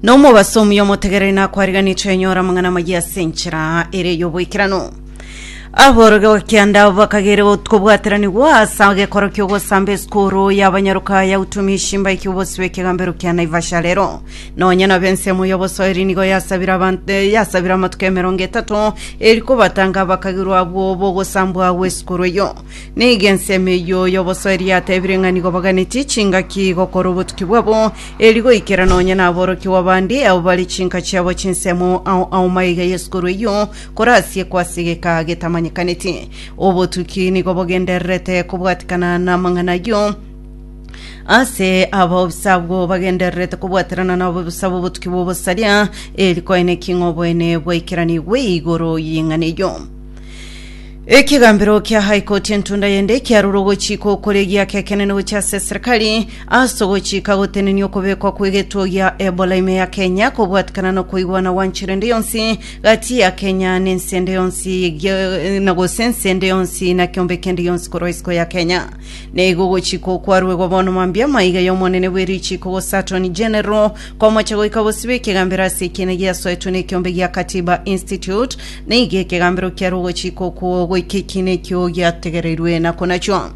nomobaso omuya omotegereri nakwariganetwe enyora amang'ana amaya ase enchera ere y'oboikerano aboroge bakianda bakagere kobwateranigwa ase agekoro ki'ogosamba esukuru y'abanyaruka ya utumishi mbaiki obosi bw'ekegambero kia naivasha rero nonya nabo ensemo y'obosoeri nigo yasabire abantu eh, yasabire amatuko emerongo etato eri kobatanga bakagirwa abwo bogosambwa gw'esukuru eyo Nigo ensemo eyio y'obosoeri yatebire ng'a nigo baganetie chingaki gokora obotuki bwabo, eri goikera nonya naborokigwa bande abo bare chinka chiabo chinsemo ao ao maiga y'esukuru eyio korasiekwa ase egeka getamanyekaneti. Obotuki nigo bogendererete kobwatikana namang'ana ayio ase abaobisa abwo bagendererete kobwaterana nabaobisa b'obotuki bw'obosaria, eri koeneki ng'a oboene bwaikeranigwe igoro y'ing'ana eyio. Ekigambero kia High Court entunda yende kiarure ogochika okore giakekenene gochia ase serikali ase ogochika gotenenia okobekwa kw'egetuo gia Ebola ime ya Kenya kobwatikana na koigwana gwa nchera ende yonsi gati ya Kenya na ense ende yonsi gia- na gose ense ende yonsi na kiombe kende gionsi korwa isiko ya Kenya. Na igo ogochika okwo kwaruegwa bono mambia maiga y'omonene bwe richiko gose Attorney General komocha goika bosibwa ekigambero ase ekiina giasoetwe n'ekiombe gia Katiba Institute Nigo ekegambero kiare ogochika okwo goika ekiina ekio giategereirwe na konachwo.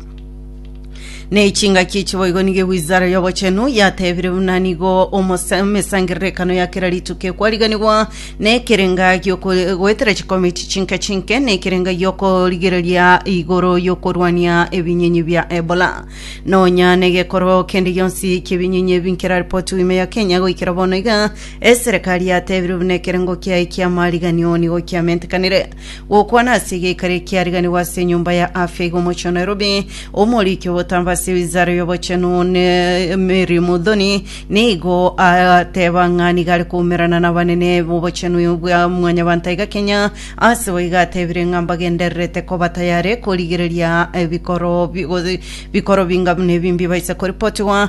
Ne chingaki echi boigo nigo ewizara y'obochenu yatebire buna nigo omose- emesangererekano ya kera rituko ekwariganigwa na ekerenga gi'oko- goetera chikomiti chinke chinke na ekerenga gi'okorigereria igoro y'okorwania ebinyenyi bia Ebola. Nonya negekoro kende gionsi ki'ebinyenyi ebi nkeraripotiwe ime ya Kenya goikera bono iga Eserekari yateebire buna ekerengo kiaye ki'amariganio nigo kiamentekanire gokwana ase egeikari ekiariganigwa ase enyomba ya afya iga omochie o Nairobi, omoriki obotambe ase wizara y'obochenu ne Mary Muthoni nigo ateeba ng'a nigo are koumerana nabanene b'obochenu bwa mwanyabanto aiga Kenya, ase boigo ateebire ng'a mbagendererete koba tayare korigereria ebikoro bi- bikoro binga buna ebi mbibaisa koripotigwa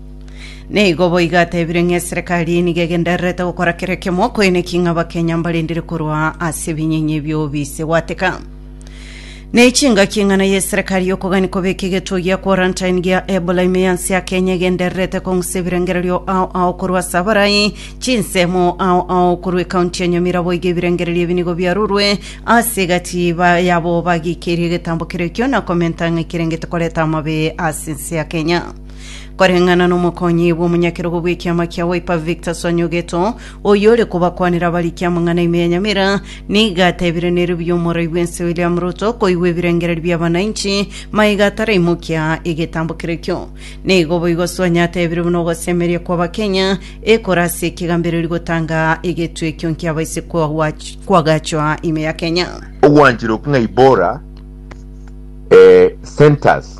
Nigo boigo atebire ng'a eserekari eye nigo egendererete gokora kera ekiamo koeneki ng'a Abakenya mbarendire korwa ase ebinyenye bi'obise gwateka. Nechingaki eng'ana y'eserekari y'okogani kobeka egetuo gia quarantine gia Ebola ime yansi ya Kenya egendererete kong'usa ebirengererio ao ao korwa ase abarai chinsemo ao ao korwa ekaunti ya Nyamira boigo ebirengererio ebi nigo biarurwe ase egati ba- yabo bagikeirie egetambo kerekio na komenta ng'a ekerengete koreta amabe ase ense ya Kenya. Koreng'ana n'omokonyi bw'omonyakerogo bw'ekiama kia Wiper Victor Sonyogeto, oyo ore kobakwanera abariki amang'ana ime ya Nyamira, nigo atebire nere buya omorai bw'ense William Ruto koigwa ebirengererio bi'abananchi maiga ataraimokia egetambo keria ekio. Nigo boigo Sonyo atebire buna ogosemeria kw'Abakenya ekore ase ekegambereri gotanga egetwe ekio nkiabaise kwagwach- kwagachwa ime ya Kenya. ogwanchire oking'aibora eh, centers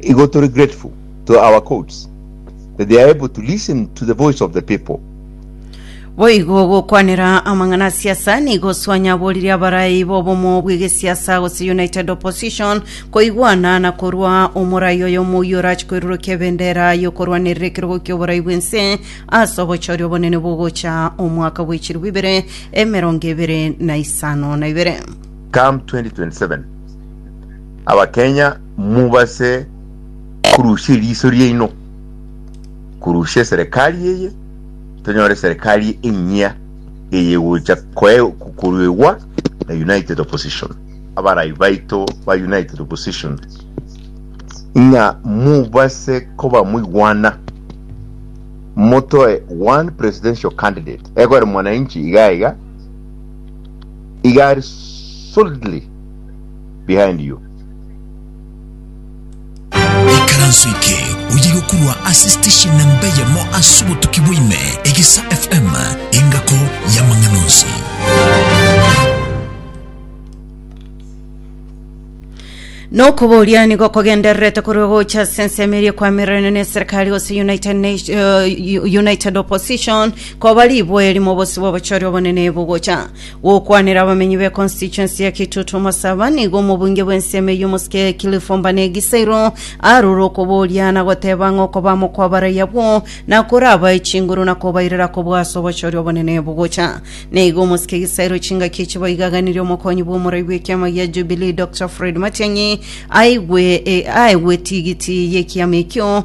Igo tore grateful to our courts that they are able to listen to the voice of the people. Boigo gokwanera amang'ana a siasa nigo swanyaborire abarai b'obomo bw'egesiasa gose United Opposition koigwana na korwa omorai oyo omouyi orache koirurukia ebendera y'okorwanerera ekerogo ki'oborai bw'ense ase obochori obonene bogocha omwaka bw'echiru bibere emerongo ebere na isano na ibere. Come 2027, Abakenya mubase korusia eriso riaino, korusia eserekari eye, tonyore eserekari enyia eyegocha koruegwa na United Opposition, abarai baito ba United Opposition, ng'a mubase koba moigwana, motoe one presidential candidate, ekore mwananchi iga iga, iga ari solidly. behind you. Ekaranso eke oyegokurwa ase station na mbeyemo ase obotuki bwaime Egesa FM engako y'amang'ana onsi. Nokoboria nigo kogendererete korwa gocha ase ensemo eria kwamererane na eserikari gose United, Nat- eh, United Opposition koba riboeri mobosibwa obochori obonene bogocha Gokwanera abamenyi be constituency ya Kitutu Masaba nigo omobunge bw'ensemo eyio Omosike Cliff Ombane Gisairo arure okoboria na goteba ng'a okobamo kw'abarai abwo nakorabae chinguru na kobairera kobua ase obochori obonene bogocha. Nigo Omosike Gisairo chingaki echi boigaganirie omokonyi bw'omorai bw'ekiama gia Jubilee Doctor Fred Matiang'i aigwe e, aegwe tigiti y'ekiama ekio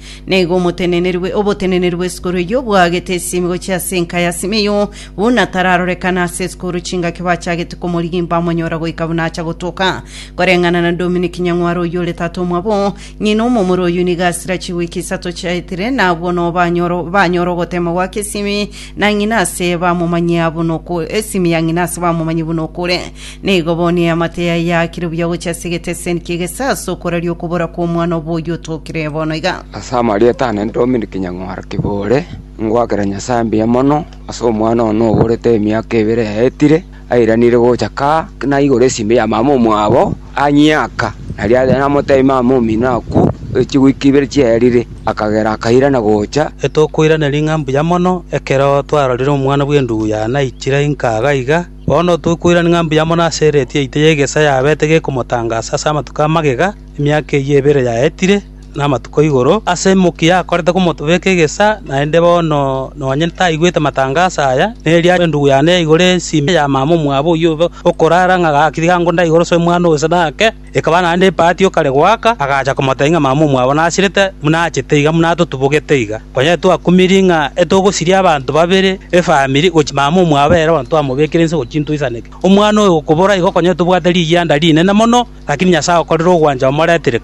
na igo omotenenerwe oboteneneri bw'esukuru eyio bwaagete esiimigo chi'ase enka ya Simeyoo, buna tararorekana ase esukuru chingaki bachagete komorigia mbamonyora goika buna acha gotoka. Koreng'ana na Dominic Nyang'ware oyio ore tata omwabo, ng'ina omomura oyio nigo asira chiwiki isato chiaetire, na abwo noo banyoro banyora ogotema gwake esiimi na ng'ina ase bamomanyia buna oku esiimi ya ng'ina ase bamomanyia buna okure. Nigo boni eamate yaye yaakire buya gochia ase egeteseni ki'egesaa ase okoraria okobora kw'omwana obo oyio otokire bono iga. Ase amarieta aane Dominic Nyang'oro Kibore, ngoakera Nyasae mbuya mono ase omwana one oborete emiaka ebere yaetire, airanire gocha ka, naigora esimi ya mama omwabo anyiaka. Nario aria namoteebia mama omino akwo, e chiwiki ibere chiaerire, akagera akairana gocha. Etokoiraneria ng'a mbuya mono ekero twarorire omwana bw'enduguya naichire inka iga iga. Bono tokoirania ng'a mbuya mono ase ereeti yaito y'egeesa yabete gekomotangaasa ase amatuko a magega, emiaka eyio ebere yaetire, na amatuko igoro, ase emokia yakorete komotobeka egeesa, naende bono nonye taigwete matangaso aya, neria endugu yane yaigora ensimi ya mama omwabo oyio okorara ng'a gaki tiga ngonda igoro ase omwana oyo ase naake. Ekaba naende epaati o kare goaka, agacha komotebia ng'a mama omwabo nasirete, buna achete iga, buna atotubogete iga. Konya etwakumirie ng'a etogosiria abanto babere efamiri gochia mama omwabo ere bono twamobekire inse gochia intoisaneke. Omwana oyo gokobora igo konya etobwate rigianda rinene mono, lakini Nyasae agokorera ogwancha omoretire.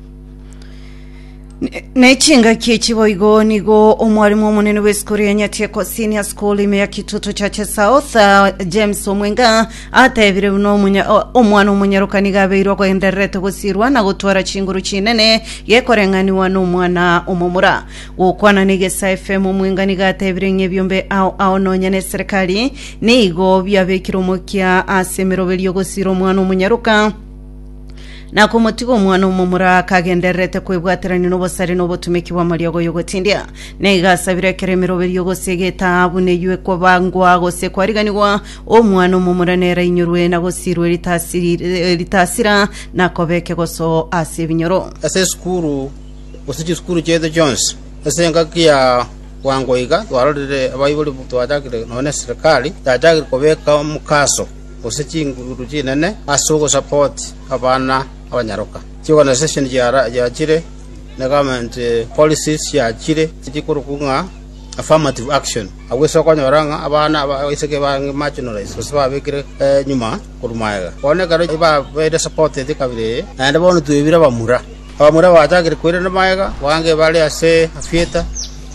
Nechingaki echi boigo nigo omwarimu omonene bw'esukuru ya Nyatieko Senior School ime ya Kitutu Church South ah, James Omwenga atebire buna omunya- o- omwana omonyaroka niga abeirwe ogoendererete gosirwa na gotwara chinguru chinene gekoreng'aniwa n'omwana omomura gokwana n'egesa FM Omwenga niga atebire ng'a ebiombe ao ao nonya n'eserekari nigo biabekire omokia ase emeroberio gosira omwana omonyaroka na komotiga omwana omomura akagendererete kwebwaterania n'obosare na obotumeki bw'amariogo y'ogotindia na igasabira ekero emeroberio gose egetaabu neywe kwabangwa gose kwariganigwa omwana omomura nera inyorwe na gosirwe ritasiri- eh, ritasira na koba ekegoso ase ebinyoro ase esukuru gose chisukuru chiaito chionsi ase engaki ya bwango iga twarorire abaibori twachakire nonye na eserikari yachakire kobeka omokaso gose chingururu chinene ase ogosapoti abana abanyaroka. Chiorganization chiachire, ne government policies chiachire chikorokwa ng'a affirmative action. Agwo ase okonyora ng'a abana abaiseke babe marginalized gose babekire nyuma korwa magega. Bono ekero babeire supported ekabira eye, naende bono twebire abamura. Abamura bachakire koirana magega, abange bare ase theatre,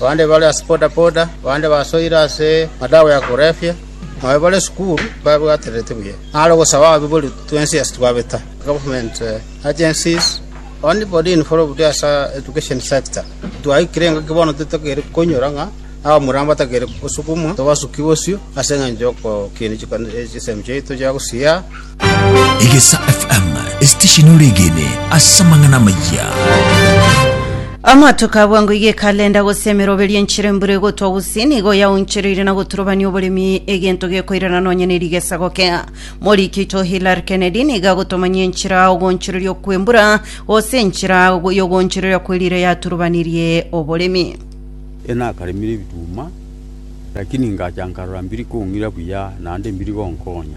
abande bare ase bodaboda, abande basoire ase madawa ya korefia. Aye bare esukuru babwatererete buya, naro ogosaba ababibori twensi ase twabeta, government agencies, only body involved ase education sector. Twaikire engaki bono totagere koinyora ng'a abamura mbatagere gosukumwa tobasuki bosio ase engencho y'ogokinia chisemi chiaito chia gosiaa. Egesa FM esitesheni oregene ase amang'ana amayia. Amatuko abwango iga ekalenda gose emeroberio enchera embura egotwa gose nigo yaonchereire na goturubania oboremi egento gekoirana nonya ne rigesa gokea moriki to Hillary Kennedy niga gotomanyia enchera ogonchereria kwembura gose enchera yogonchereria kwerire yaturubanirie oboremi Ena akaremire ebituma, lakini ngacha nkarora mbiri kong'ira buya, naende mbiri gonkonya.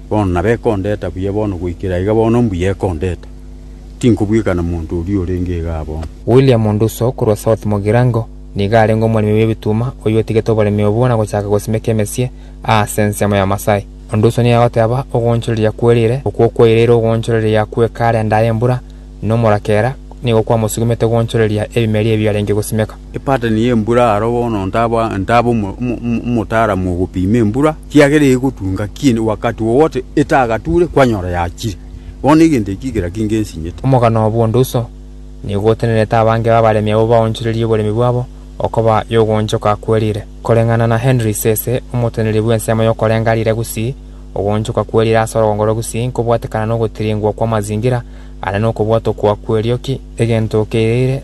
Bono nabo ekondeta buya bono, goikera aiga bono mbuya ekondeta. Tinkobweka na monto oria orenge iga abono. William Nduso korwa South Mugirango nigo arenge omoremi bw'ebituma oyio otigete oboremi obwo na gochaka gosimeka emesie aase ensemo ya Masai. Nduso nigo agoteba ogoonchoreria kwerire okwo kwaireire ogoonchoreria kw'ekaara endaa y'embura na omorakera nigo kwamosugumete goonchoreria ebimeri ebio arenge gosimeka. Epatani y'embura aro bono ntaba omotaaramu ogopiima embura. Kiagera egotunga ki'ende wakati wowote etagature kwanyora yachire. Bono egento eki kera kinge nsinyete. Omogano obo onde uso, nigo otenerete abange b'abaremi abwo baonchorerie oboremi bwabo okoba y'ogoonchoka kwerire. Koreng'ana na Henry Sese, omoteneneri bw'ensemo y'okorenga rire gusii, ogoonchoka kwerire ase orogongoro gusii nkobwatekana nogotiringwa kw'amazingira ande nokobwatokwa kw'erioki, egento keireire,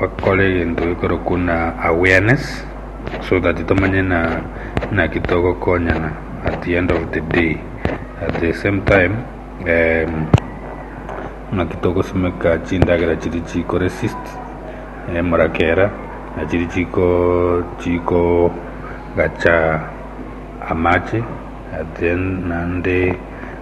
Bakore egento gekorokwa buna awareness so that tomanye buna naki togokonyana at the end of the day at the same time naki togosimeka chindagera chiria chiko resist emorokera na chiria chikogacha amache naende.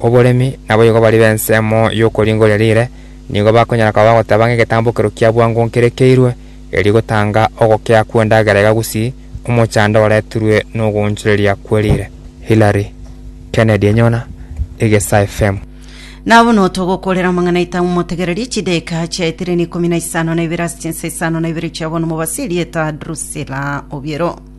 Oboremi naboigo baria b'ensemo y'okoringoria riire nigo bakonyara koba bagoteba ng'a egetambokero kia bwango nkerekeirwe, erio gotanga ogokea kw'endagera iga gusii omochando oretirwe n'ogoonchoreria kwe riire. Hilary Kennedy Enyona, Egesa FM. Na bono togokoorera amang'anaita momotegererie chideeka chiaetire na ikomi na isano na ibere ase chinsa isano na ibere chia bono mobasi erieta Drusilla Obiero.